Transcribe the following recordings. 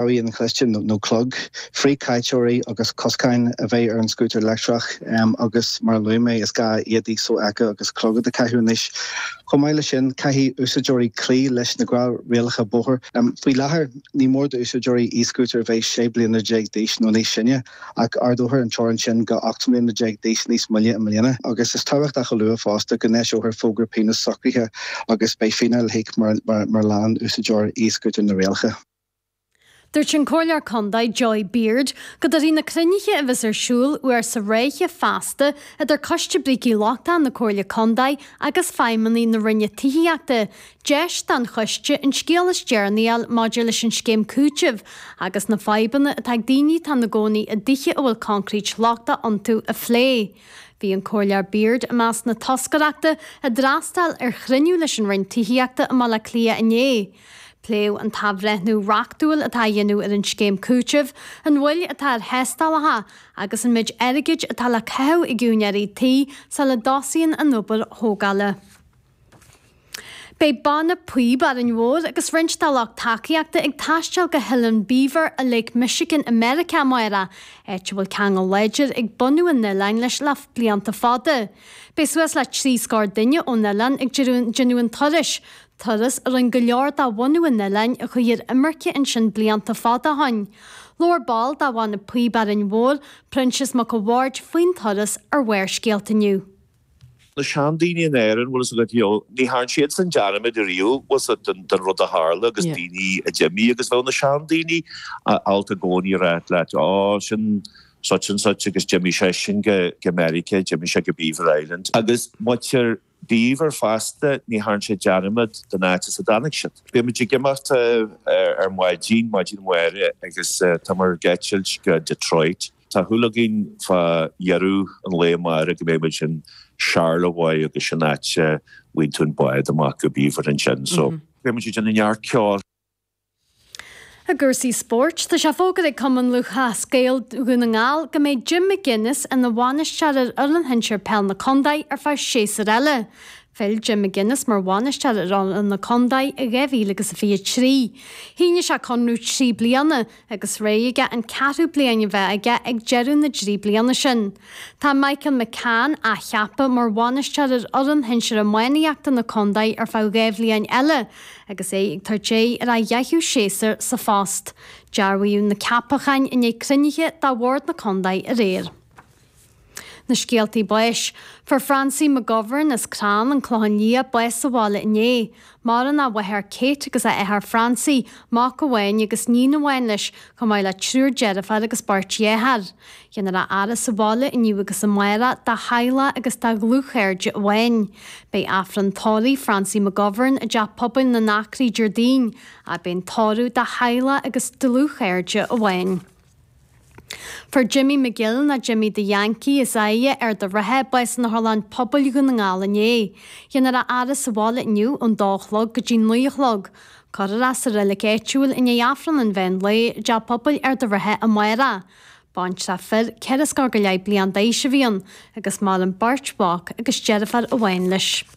Rabhaidh inchloiste, nó clog, frithchaiteoirí agus coscáin a bheith ar an scútar leictreach agus, mar a luaigh mé, is gá éadaí sofheicthe agus clogad a chaitheamh anois. Chomh maith leis sin, caithfidh úsáideoirí cloí leis na gnáthrialacha bóthair. Faoi láthair, ní mór d'úsáideoirí e-scútair bheith 16 bliana d'aois nó níos sine, ach ardófar an teorainn sin go 18 mbliana d'aois níos moille i mbliana. Agus is tábhachtach a lua fosta go n-eiseofar fógra pionós socraithe agus beidh fíneáil le híoc mura leanann úsáideoir e-scútair na rialacha. Dúirt an Comhairleoir Condae Joy Beard go dtabharfaidh na cruinnithe a bheas ar siúl uair sa ráithe feasta idir Coiste Brící Lochtacha na Comhairle Condae agus feidhmeannaigh na Roinne Tithíochta deis don choiste an scéal is deireanaí a fháil maidir leis an scéim cúitimh agus na fadhbanna atá ag daoine atá ina gcónaí i dtithe a bhfuil coincréit lochtach iontu a phlé. Bhí an Comhairleoir Beard i measc na toscaireachta a d'fhreastail ar chruinniú leis an Roinn Tithíochta i mBaile Átha Cliath inné. Pléadh an t-athbhreithniú reachtúil atá á dhéanamh ar an scéim cúitimh, an mhoill atá ar thástálacha agus an méid airgid atá le caitheamh ag úinéirí tí sula dtosaíonn an obair thógála. Beidh Banna Píob Árainn Mhór agus roinnt dá lucht tacaíochta ag taisteal go hOileán Beaver i Lake Michigan i Meiriceá amárach, áit a bhfuil ceangal láidir ag bunadh an oileáin leis le blianta fada. Beidh suas le trí scór duine ón oileán ag déanamh an turais, turas a rinne go leor de bhunadh an oileáin a chuaigh ar imirce ansin blianta fada ó shin. Labhair ball de Bhanna Píob Árainn Mhór, Proinsias Mac a' Bhaird, faoin turas ar Bharrscéalta inniu. Na seandaoine in Árainn, bhfuil fhios agat, you know, ní thearn siadsan dearmad ariamh, bhfuil fhios agat, den rud a tharla agus daoine a d'imigh agus bheadh na seandaoine abálta i gcónaí a rá leat, Ó, sin such and such agus d'imigh seisean go Meiriceá, d'imigh sé go Beaver Island. Agus muintir Beaver fosta, ní thearn siad dearmad den áit as a dtáinig siad. Beidh muid ag imeacht ar maidin, maidin amárach, agus tá muid ag eitilt go Detroit. Tá súil againn fá dheireadh an lae amárach go mbeidh muid in Charlevoix agus sin áit a bhfaigheann tú an bád amach go Beaver ansin so beidh muid ag déanamh neart ceoil. I gcúrsaí spóirt, tá sé fógartha ag Cumann Lúthchleas Gael Dhún na nGall go mbeidh Jim McGuinness ina bhainisteoir ar fhoireann shinsir peil na contae ar feadh séasúr eile. Phill Jim McGuinness mar bhainisteoir ar fhoireann na contae i 2023. Shínigh sé conradh trí bliana agus rogha aige an ceathrú bliain a bheith aige ag deireadh na dtrí bliana sin. Tá Michael McCann athcheaptha mar bhainisteoir ar fhoireann shinsir iománaíochta na contae ar feadh dhá bhliain eile agus é ag tabhairt aghaidh ar a dheichiú séasúr sa phost. Dearbhaíodh na ceapacháin i ndiaidh cruinnithe de Bhord na Contae aréir. Na scéaltaí báis. Fuair Francie McGovern as Crann, an Clochán Liath bás sa bhaile inné. Maireann a mháthair Kate agus a athair Francie, mac amháin agus níon amháin leis, chomh maith le triúr deirféar agus beirt dheartháir. Dhéanfar a fhaire sa bhaile inniu agus amárach dá theaghlach agus dá dhlúthchairde amháin. Beidh Aifreann tórraimh Francie McGovern i dTeach Pobail na nAcraí Déardaoin. Agus beidh an tórramh dá theaghlach agus dlúthchairde amháin. Fuair Jimmy McGill, nó Jimmy the Yankee, as Aighe, Ard an Rátha, bás in Otharlann Pobail Dhún na nGall inné. Dhéanfar a fhaire sa bhaile inniu ón dó a chlog go dtí naoi a chlog. Cuirfear é sa reilic áitiúil i ndiaidh Aifreann an mheán lae, i dteach pobail Ard an Rátha amárach. Baintreach fir ceithre scór go leith bliain d'aois a bhí ann, agus maireann beirt mhac agus deirfiúr amháin leis.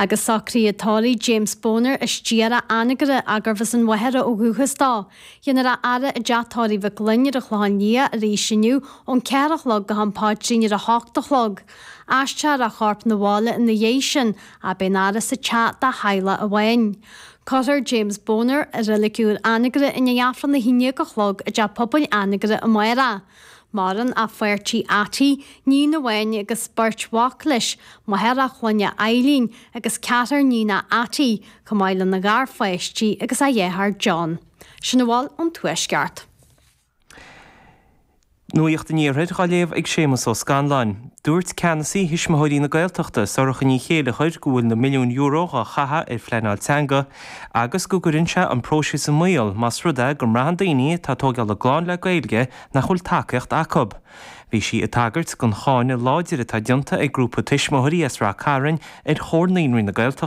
Agus socruithe tórraimh James Boner as Doire, Anagaire arbh as an Mhachaire ó dhúchas dó. Dhéanfar a fhaire i dteach tórraimh Mhic Fhloinn ar an Chlochán Liath arís inniu ón cheathair a chlog go ham paidrín ar a hocht a chlog. Aistreofar a chorp 'na bhaile ina dhéidh sin agus beidh an fhaire sa teach dá theaghlach amháin. Cuirfear James Boner i reilic úr Anagaire i ndéidh Aifreann a haon dhéag a chlog i dteach pobail Anagaire amárach Maireann a pháirtí Atty, níon amháin agus beirt mhac leis, máthair a chlainne Eileen agus ceathrar níonach Atty, chomh maith lena gharpháistí agus a dheartháir John. Sin a bhfuil ón Tuaisceart. Nuacht an Iarthair dhá léamh ag Séamus Ó Scanláin. Dúirt Ceannasaí Thuismitheoirí na Gaeltachta, Sorcha Ní Chéilleachair go bhfuil na milliúin euro dhá chaitheadh ar phleanáil teanga, agus go gcuireann sé an próiseas i mbaol más rud é go mbraitheann daoine atá ag tógáil a gclann le Gaeilge nach bhfuil tacaíocht acu. Bhí sí ag tagairt don cháineadh láidir atá déanta ag grúpa tuismitheoirí as Rath Cairn ar Chomhar Naíonraí na Gaeltachta.